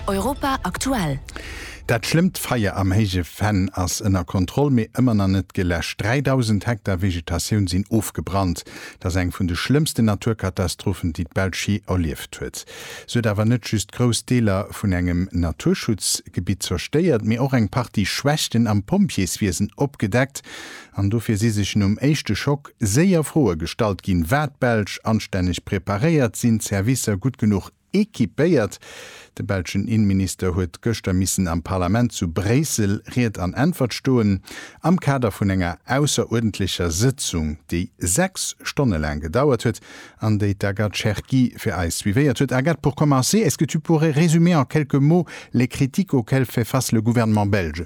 Europa aktuell. Dat schlëmmt Feier am Héije Venn ass ënner Kontroll, mee ëmmer nach net geläscht. 3.000 Hektar Vegetatioun sinn ofgebrannt. Et ass eng vun de schlëmmsten Naturkatastrophen, déi d'Belsch jee erlieft huet. Se huet awer net just grouss Deeler vun engem Naturschutzgebitt zerstéiert, mee och eng Partie Schwächten am Pompjeeswiesen opgedeckt. An dofir si sech nom éischte Schock séier Froe gestallt ginn, War d'Belsch anstänneg preparéiert? Sinn d'Servicer gutt genuch equipéiert? De belschen Innenminister huet gëschter missen am Parlament zu Bréissel Ried an Äntwert stoen, am Kader vun enger ausseruerdentlecher Sëtzung, déi 6 Stonne laang gedauert huet an déi d'Agathe Cherki fir eis suivéiert huet. Agathe, pour commencer, est-ce que tu pourrais résumer en quelques mots les critiques auxquelles fait face le gouvernement belge?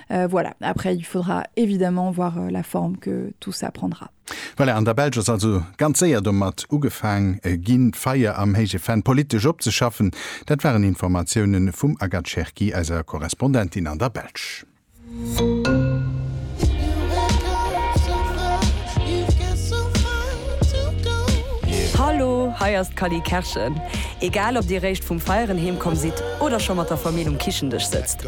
Voilà, après il faudra évidemment voir la forme que tout ça prendra. Voilà, an der Belsch ass also ganz séier domat ugefaang ginn, d'Feier am Héije Venn politesch opzeschaffen. Dat waren Informatiounen vum Agathe Cherki, eiser Korrespondentin an der Belsch. Hallo, hei ass d'Cally Kerschen. Egal ob dir réischt vum Feieren heemkomm sidd oder scho mat der Famill um Kichendësch sëtzt.